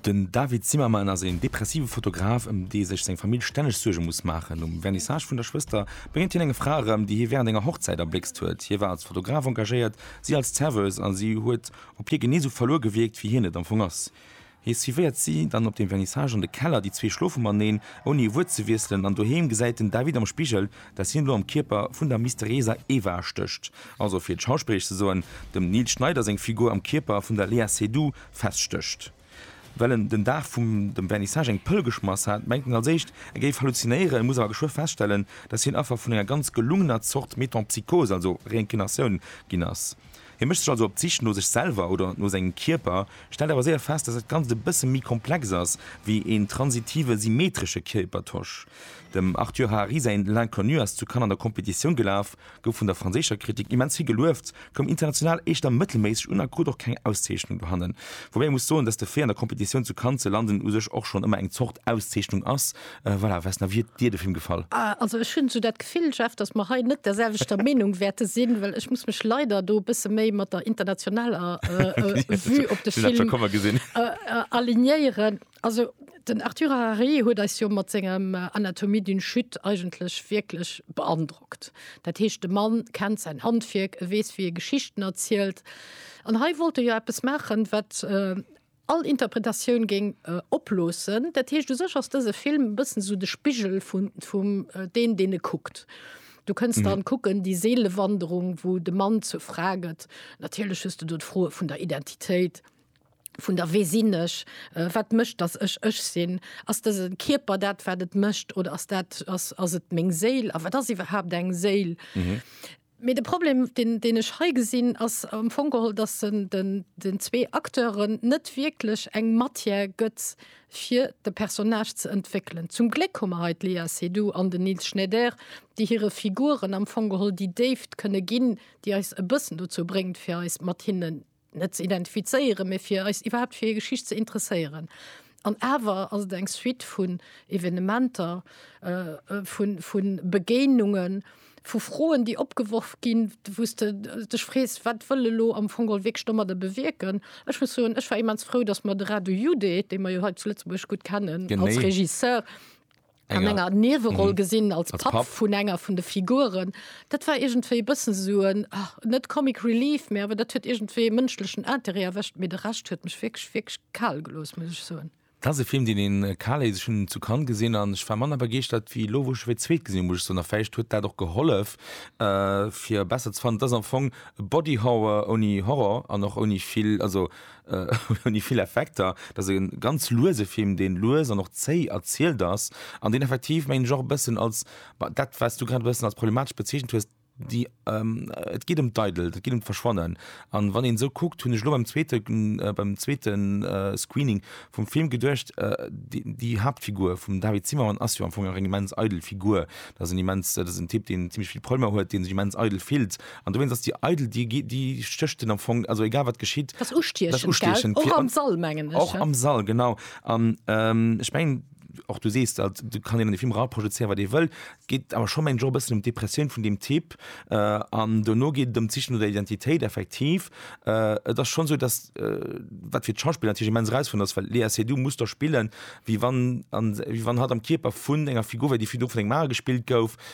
Den David Zimmerman ass een depressive Fotograf, ëm dee sech seng Famill stänneg Suerge muss maachen. Um Vernissage vun der Schwëster bréngt hien eng Fra erëm, déi hie wärend enger Hochzäit erbléckst huet. Hie war als Fotograf engagéiert, si als Serveuse, a si huet op hie genee esou verluer gewierkt, wéi hien et am Fong ass. Hie suivéiert si dann op dem Vernissage an de Keller, déi zwee schlofe mateneen, ouni e Wuert ze wiesselen, an doheem gesäit den David am Spigel, datt hien elo am Kierper vun der mysterieser Eva stécht, also fir et schauspilleresch ze soen, dem Nils Schneider seng Figur am Kierper vun der Léa Seydoux feststécht. Well en den Dag vum dem Vernissage eng Pëll geschmass hat, mengt en als éischt, e géif halluzinéieren, muss awer geschwë feststellen, datt hien Affer vun enger ganz gelungener Zort Metempsychose, also Reincarnatioun, ginn ass. Hie mécht sech also op d'Sich no sech selwer oder no sengem Kierper, stellt awer séier fest, dass dat Ganzt e bësse méi komplex ass wéi een transitive symmetresche Kierpertausch. Dem Arthur Harari säin L'Inconnu ass zu Cannes an der Competitioun gelaf, gouf vun der franséischer Kritik immens vill gelueft, koum international éischter mëttelméisseg un a krut och keng Auszeechnung dohannen. Woubäi ee muss soen, dass de Fait an der Competitioun zu Cannes ze landen u sech och schonn ëmmer eng Zort Auszeechnung ass, Äh, voilà, was na wie dir de Film gefall? Ah, also ech hunn so dat Gefill Jeff, dass mer hei net derselwechter Meenung wäerte sinn, well ech muss mech leider do bësse méi mat der internationaler äh, äh, Vue op de Film äh, äh, alignéieren. Also den Arthur Harari huet eis jo mat sengem äh, Anatomie d'une Chute eigentlech wierklech beandrockt. Dat heescht de Mann kennt sein Handwierk, e weess wie e Geschichten erzielt. An hei wollt e jo eppes machen, wat äh, all Interpretatioun géing oploossen. Dat heescht, u sech ass dëse Film e bëssen esou de Spigel vun, vum deen, deen e kuckt. Du kënns dann kucken, déi Seelewanderung, wou de Mann zur Fra gëtt. Natierlech hues de do d'Froe vun der Identitéit, vun der Wee sinn ech, wat mécht, datt ech ech sinn? Ass dëse Kierper dat, wat et mécht, oder ass dat, ass, ass et meng Séil? A wat ass iwwerhaapt eng Séil? Mee de Problem, deen, deen ech hei gesinn, ass am Fong geholl, dass en den zwee Acteuren net wierklech eng Matière gëtt, fir de Personnage ze entwéckelen. Zum Gléck hu mer hei d'Léa Seydoux an den Nils Schneider, déi hire Figuren am Fong geholl déi Déift kënne ginn, déi eis e bëssen dozou bréngt, fir eis mat hinnen net ze identifizéieren, mee fir eis iwwerhaapt fir hir Geschicht ze interesséieren. An awer ass et eng Suite vun Evenementer, vu Begéinungen, vu Froen, déi opgeworf ginn, wou s de dech frees, Wat wëll elo am Fong geholl wierklech domadder bewierken? Ech muss soen, ech war immens frou, datt mer de Radu Jude, dee mer jo hei zu Lëtzebuerg gutt kennen als Regisseur, an enger Nieweroll gesinn als Papp vun enger vun de Figuren. Dat war iergendwéi e bëssen esou en, net Comic Relief, mä awer dat huet iergendwéi e mënschlechen Interêt erwëscht. Mee de Rescht huet mech wierklech, wierklech kal gelooss, muss ech soen. Dat ass e Film, deen een kal léisst. Ech hunn en zu Cannes gesinn an ech war manner begeeschtert ewéi elo, wou ech e fir d'zweet gesinn hunn, muss ech soen. A vläicht huet dat och gehollef, fir e besser ze fannen. Et ass am Fong e Body Horror ouni Horror an och ouni vill, also, hunn déi vill Effekter, dat ass e ganz luese Film, dee lues an och zéi erzielt ass an deen effektiv, mengen ech, och e bëssen als dat, wat s du grad e bëssen als problematesch bezeechent hues, déi, et geet ëm d'Eidelt, et geet ëm d'Verschwannen. An wann een esou kuckt, hunn ech elo beim zweete, beim zweete Screening vum Film geduecht, déi Haaptfigur vum David Zimmermann ass jo am Fong nach eng immens eidel Figur. Dat ass en immens, dat ass en Typ, deen zimmlech vill Problemer huet, dee sech immens eidel fillt An dowéinst ass déi eidel, déi, déi stécht en am Fong, also egal wat geschitt, Dat ass dass ustiechend, ustiechend gell? fir Och an, am Sall, mengen ech, och ja. am Sall, genau. An ähm, ech mengen, och du sees dat, do kann een an de Film eraprojezéieren, wat ee wëll. Et geet awer scho, mengen ech, och e bëssen ëm d'Depressioun vun deem Typ. Äh, an dono geet et ëm d'Siche no der Identitéit, effektiv. Äh, et ass schonn esou, dass, äh, wat fir d'Schauspiller natierlech immens erausfuerdernd ass, well d'Léa Seydoux muss do spillen, wéi wann, an, wéi wann hatt am Kierper vun enger Figur wär, déi virdru vun engem anere gespillt gouf,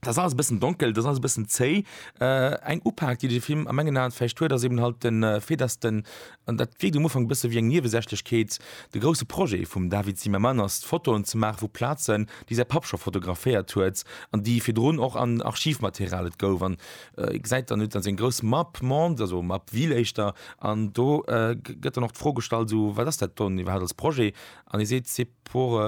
Dat ass alles e bëssen donkel, dat ass alles e bëssen zéi. Äh, eng Upak, déi de Film a mengen Aen vläicht huet, ass eben halt den äh, Fait, dass den, an dat wierkt um Ufank e bësse wéi eng Niewesächlechkeet, de grousse Projet vum David Zimmerman ass, Fotoen ze maache vu Plazen, déi säi Papp scho fotograféiert huet an déi virdrun och an Archivmaterial. Et gouf an äh, ee gesäit dann, et huet dann seng grouss Map monde, also Map ville éischter, an do äh, gëtt dann och d'Fro gestallt, esou, wat ass dat dann iwwerhaapt als Projet? An e seet, c'est pour,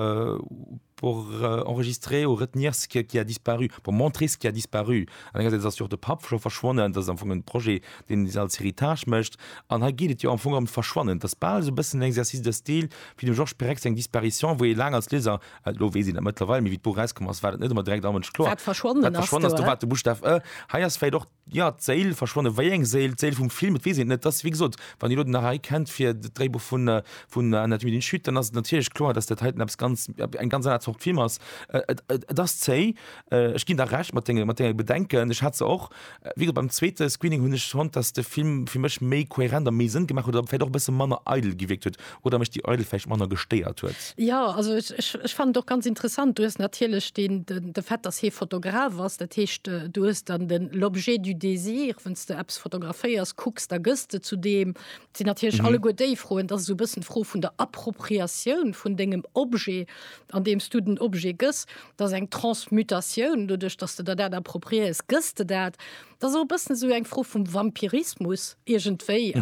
pour enregistrer ou retenir ce qui a disparu, pour montrer ce qui a disparu. An engersäits ass jo och de Papp scho verschwonnen, dat ass am Fong en Projet, deen se als Héritage mécht. An hei geet et jo am Fong ëm d'Verschwannen. Et ass bal esou e bëssen en Exercice de style wéi dem Georges Perec seng Disparition, wou ee laang als Lieser, elo weess een dat mëttlerweil, mee wéi d'Buch erauskomm ass, war dat net ëmmer direkt am Mënsch kloer, Wat verschwonnen ass, do war de Buschtaf e. Hei ass vläicht och. Jo, d'Séil verschwonnen. Wéi eng Séil? D'Séil vum Film? Et weess een et net. Et ass, wéi gesot, wann Dir elo den Harari kennt fir dat Dréibuch vun, vun Anatomie d'une Chute, dann ass et natierlech kloer, dass dat heiten eppes ganz, eng ganz aner Zort Film ass. Et, et, et ass zéi. Ech ginn der Recht mat denge, mat denge Bedenken. Ech hat se och. Wéi gesot, beim zweete Screening hunn ech fonnt, dass de Film fir mech méi kohärent a méi Sënn gemaach huet oder vläicht och e bësse manner eidel gewierkt huet. oder mech déi Eidel vläicht manner gestéiert huet. Jo, also ech fannen et och ganz interessant. Du hues natierlech den de Fait, dass hie Fotograf ass, dat heescht, du hues dann den l'objet du désir, wann s de eppes fotograféiers, kucks, da gëss de zu deem. Et sinn natierlech alleguer déi Froen. Et ass esou e bëssen d'Fro vun der Appropriatioun vun dengem Objet, andeem s du den Objet gëss. Et ass eng Transmutatioun, doduerch dass de der dat appropriéiers, gëss de dat. Dat ass och e bëssen esou eng Fro vum Vampirismus iergendwéi,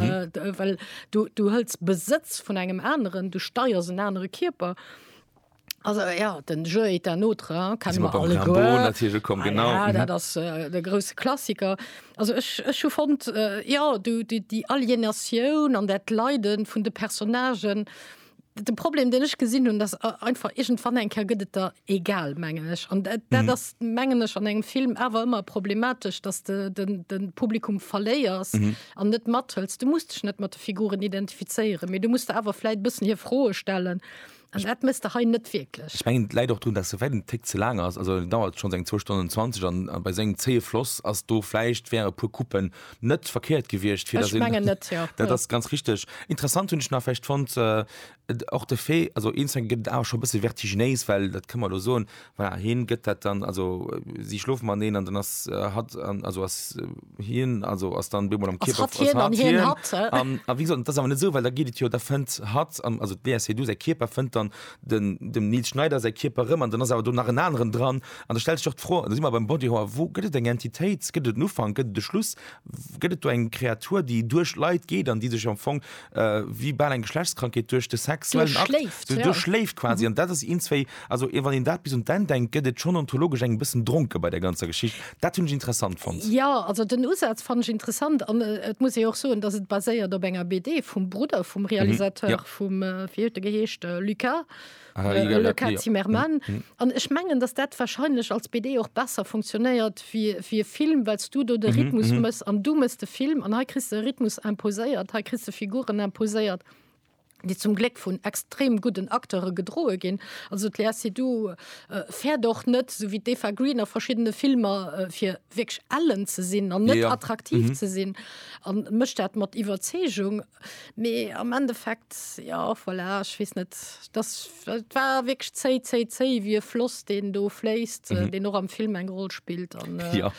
well du, du hëls Besëtz vun engem aneren, du steiers en anere Kierper. Also ja, den Jeu est un autre, hein, Jetzt kennen sind wir wir beim Rimbaud alleguer. natürlich gekommen, Ah genau. ja, Mhm. dat ass äh, de grousse Klassiker. Also ech, ech hu fonnt, äh, ja, du, déi, déi Alienatioun an dat Leiden vun de Personnagen, De Problem den ech gesinn hunn, dass einfach egent wann eng Ker gëtt et der egal mengen ech an dat mm. ass mengen ech an engem Film awer ëmmer problematesch, dass de den, den Publikum verléiers an mm. net mathëls. Du musst dech net mat de Figuren identifizéieren, méi du musst awer fläit bëssen hir Froe stellen. Also, dat mist der hein net wirklich ich mein, leid auch tun dass du werden tick zu lang hast also dauert schon seng 2 stunden 20 an bei seng zee floss as du fleischcht wäre pur kuppen Net verkéiert gewiescht, fir dass een, dat ass ganz richteg. Interessant hunn ech nach vläicht fonnt, och de Fait, also een Song gëtt et awer scho e bësse vertiginéis, well dat kënne mer elo soen, voilà, hien gëtt dat dann, also si schlofe mateneen an dann ass hatt, also ass hien, also ass dann op eemol am Kierper, ass hatt hien. A wéi gesot, dat ass awer net esou, well da geet et jo, da fënnt hatt, also d'Léa Seydoux säi Kierper fënnt dann den dem Nils Schneider säi Kierper rëm an dann ass awer do nach en aneren dran an da stellt sech och d'Fro, da si mer beim Body Horror, wou gëtt et eng Entitéit, gëtt et en Ufank, gëtt et e Schluss, gëtt et do eng Kreatur, déi duerch Leit geet an déi sech am Fong äh, wéi bal eng Geschlechtskrankheet duerch de sexuellen Akt Duerchschléift, so ja. duerchschléift quasi Mhm. an dat ass eens wéi also ee wann een dat bis un d'Enn denkt, gëtt et schonn ontologesch eng bëssen dronke bei der ganzer Geschicht. Dat hunn ech interessant fonnt. Ja, also den Usaz fannen ech interessant an äh, et muss ee och soen, dass et baséiert op enger BD vum Brudder vum Mhm, Realisateur. ja. vum äh, wie huet de geheescht äh, Lucas ah, äh, egal, Lucas ja. Zimmermann mm, mm. an ech mengen dass dat wahrscheinlich als BD och besser funktionéiert wie wie Film wells du do de mhm, Rhythmus mm -hmm. muss an du muss de Film an he christ Rhythmus imposéiert he christ Figuren imposéiert die zum Gleck vun extrem guten Akteure gedroe gin. Also si du äh, fär doch net so wie Deva Green a verschiedene Filmer äh, fir wegg allen ze sinn an net ja. attraktiv mhm. ze sinn an mecht dat mat Iwerzegung Mee am Endeffekt ja voilà, ech weess net, dass et war wierklech zéi, zéi, zéi wéi e Floss, deen do fléisst, mhm. deen och am Film eng Roll spillt an äh, ja.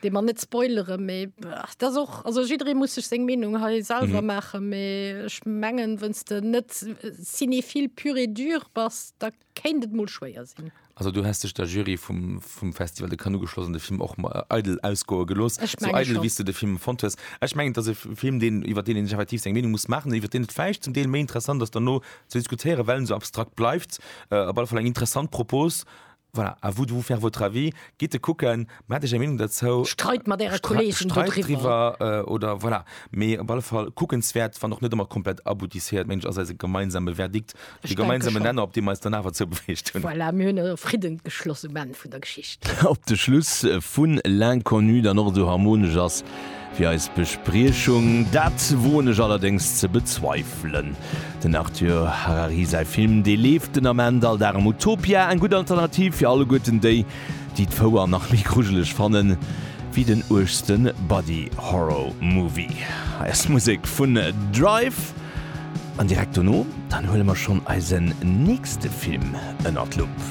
de man net spoilere méi dat och also jidré muss sech seng Menung ha selber mhm. mache méi ech mengen wënns de net äh, sinni vill pure dur bass da kéint et mol schwéier sinn. Also du häss dech der Jury vum, vum Festival de Cannes ugeschloss an de Film och äh, eidel ausgoe gelooss, Ech sou menge eidel schon. wéi s du de Film fonnt hues. Ech mengen, et ass e F- Film, deen, iwwer deen een sech effektiv seng Meenung muss maachen, iwwer deen et vläicht zum Deel méi interessant ass derno ze diskutéieren, well en sou abstrakt bleift. Äh, op alle Fall eng interessant Propos. Voilà, à vous de vous faire votre avis. Gitt e kucken. Mä hat Dir eng Meenung derzou? Streit mat Äre Kolleegen Streit dodriwwer. driwwer oder voilà. Mee op alle Fall kuckenswäert, wann och net ëmmer komplett aboutisséiert, meng ech, ass eise gemeinsame Verdikt, Ech de denke gemeinsame schonn. Nenner, op dee mer eis dann awer zoubewegt hunn. Voilà, mir hunn e Fridden geschloss um Enn vun der Geschicht. Op de Schluss vun L'Inconnu dann och esou harmonesch ass wéi eis Bespriechung, dat woen ech allerdéngs ze bezweifelen. Den Arthur Harari säi Film, dee leeft den Ament all Dag am Utopia, eng gutt Alternativ fir alleguerten déi, déi d'Fouer nach méi grujeleg fanne wéi den uergste Body Horror Movie. Hei ass d'Musek vun Drive an direkt dono dann huele mer schonn eisen nächste Film ënnert d'Lupp.